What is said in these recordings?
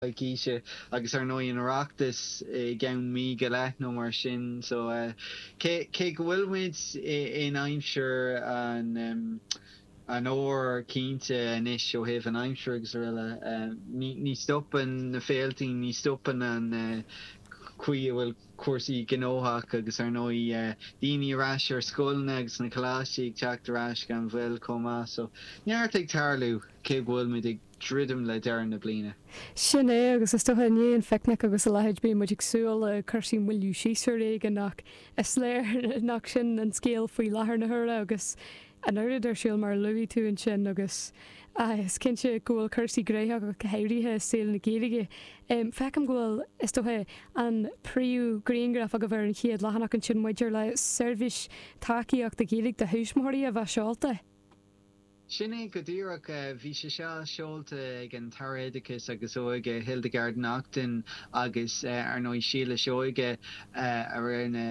coicíse, agus ar ndóigh an tOireachtas i gceann mí go leith nó mar sin so cé go bhfuil muid in aimsir an fhómhair cinnte anois ó thaobh na haimsire agus araile, ní stopann na féiltí, ní stopann an chaoi a bhfuil cúrsaí gnóthach agus ar ndóigh daoine ar ais ar scoileanna agus na coláistí ag teacht ar ais gan mhoill chomh maith so neart ag tarlú cé go bhfuil muid ag druidim le deireadh na bliana. Sin é, agus is dócha i ndiaidh an phicnic agus a leithéid bíonn muid ag súil le cúrsaí moilliú síos ar bhealach éigin ach is léir nach sin an scéal faoi láthair na huaire agus an oiread ar siúl mar a luaigh tú ansin agus is cinnte go bhfuil cúrsaí graitheach go háirithe i saol na Gaeilge. Feicim go bhfuil, is dócha, an príomhghrianghraf agaibh ar an chéad leathanach ansin maidir le seirbhís tacaíochta Gaeilge do thuismitheoirí a bheith seolta. Sin é go díreach. Bhí sé seo seolta ag an tAire Oideachais agus Óige, Hildegarde Naughton, agus ar ndóigh Síle Seoige a rinne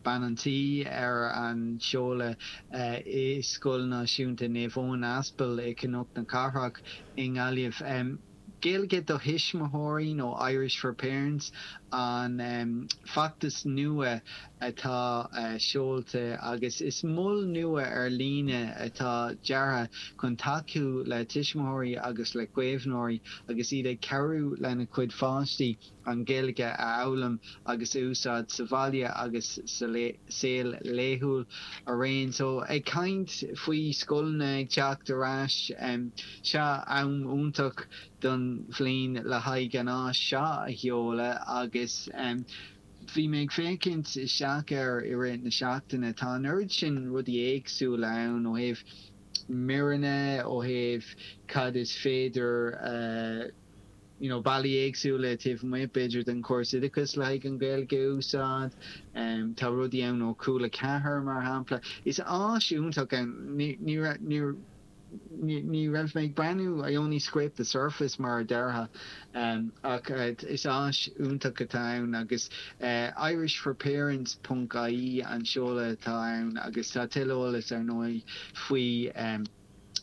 bean an tí ar an seoladh i Scoil Náisiúnta Naomh Eoin Aspal i gCnoc na Cathrach i nGaillimh. Gaeilge do Thuismitheoirí nó Irish for Parents an feachtas nua atá seolta agus is mol nua ar líne atá deartha chun tacú le tuismitheoirí agus le caomhnóirí agus iad ag cabhrú lena gcuid páistí an Ghaeilge a fhoghlaim agus a úsáid sa bhaile agus sa saol laethúil araon. So, ag caint faoi scoileanna ag teacht ar ais, seo am iontach den bhliain le haghaidh an áis seo a sheoladh agus bhí mé ag féachaint isteach air i rith na seachtaine. Tá an oiread sin rudaí éagsúla ann ó thaobh míreanna, ó thaobh cad is féidir a. you know bealaí éagsúla taobh amuigh b'fhéidir den chóras oideachais le haghaidh an Ghaeilge a úsáid. Tá rudaí ann ó Chúla 4 mar shampla. Is áis iontach atá ann. Ní ní ní ní raibh mé ag breathnú I only scraped the surface mar a déarfá ach is áis iontach atá ann agus irishforparents ponc ie an seoladh atá ann agus tá tuilleadh eolais ar ndóigh faoi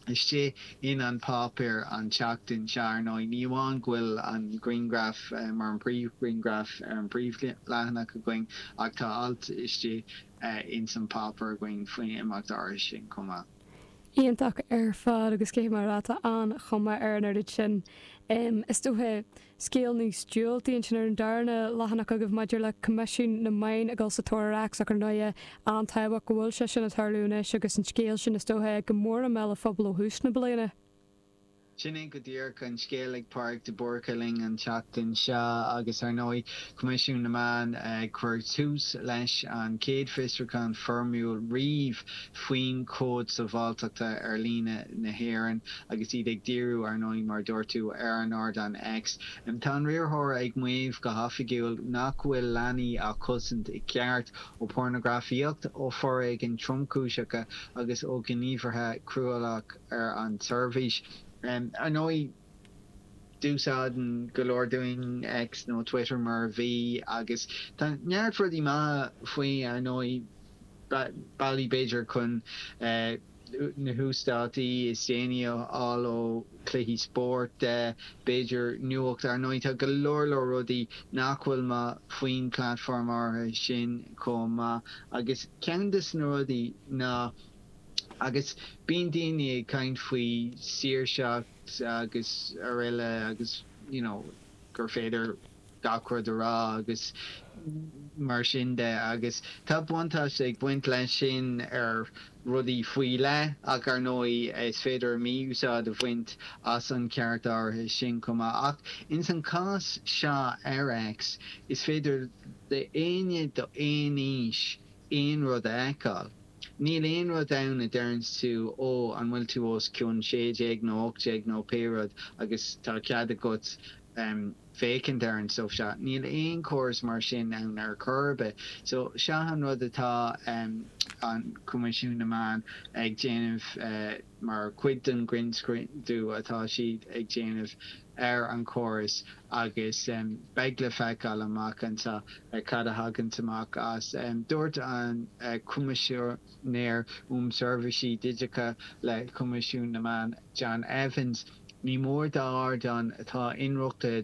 istigh in An Páipéar an tseachtain seo. Ar ndóigh, ní amháin go bhfuil an grianghraf mar an príomhghrianghraf ar an bpríomhleathanach againn ach tá alt istigh ins An Páipéar againn faoin imeacht áirithe sin chomh maith. Iontach ar fad agus cé mar atá an chuma ar an oiread sin, is dócha, Scéal níos diúltaí ansin ar an darna leathanach agaibh maidir le Coimisiún na Meán ag dul sa tóir ar X ach ar ndóigh é an-tábhachtach go bhfuil sé sin ag tarlú anois agus an scéal sin is dócha é go mór i mbéal an phobail ó thús na bliana. Sin é go díreach an scéal ag Pádraig de Búrca linn an tseachtain seo agus ar ndóigh Coimisiún na Meán ag cur tús leis an chéad fiosrúchán foirmiúil riamh faoin Chód Sábháilteachta ar Líne na hÉireann agus iad ag díriú, ar ndóigh, mar a dúirt tú, ar an ardán X. Tá an riarthóir ag maíomh go hoifigiúil nach bhfuil leanaí á chosaint i gceart ó phornagrafaíocht, ó foréigean tromchúiseacha agus ó ghníomhartha cruálach ar an tseirbhís. Ar ndóigh. Úsáideann go leor dínn X nó Twitter mar a bhí agus tá neart rudaí maithe faoi, ar ndóigh, bealaí b'fhéidir chun na huasdátaí is déanaí a fháil ó chluichí spóirt de, b'fhéidir nuacht, ar ndóigh tá go leor leor rudaí nach bhfuil maith faoin platform áirithe sin chomh maith agus ceann de na rudaí ná. Agus bíonn daoine ag caint faoi saoirseacht agus aroile agus you know gur féidir gach rud a rá agus mar sin de agus tá buntáiste ag baint leis sin ar rudaí faoi leith ach ar ndóigh is féidir mí-úsáid a bhaint as an ceart áirithe sin chomh maith. Ach ins an chás seo ar X is féidir d'aoinne d'aon aois aon rud a fheiceáil. Níl aon rud ann a deireanns tú, Ó, an bhfuil tú os cionn sé déag nó ocht déag nó pé rud agus tá cead agat féachaint ar an stuif seo. Níl aon chóras mar sin ann ar chor ar bith. So, seo an rud atá an Coimisiún na Meán ag déanamh, mar chuid den ghrinnscrúdú atá siad ag déanamh, ar an chóras agus beidh le feiceáil amach anseo cad a thaganns amach as. Dúirt an Coimisinéir um Sheirbhísí Digiteacha le Coimisiún na Meán, John Evans, Ní mór d'ardáin atá inrochtana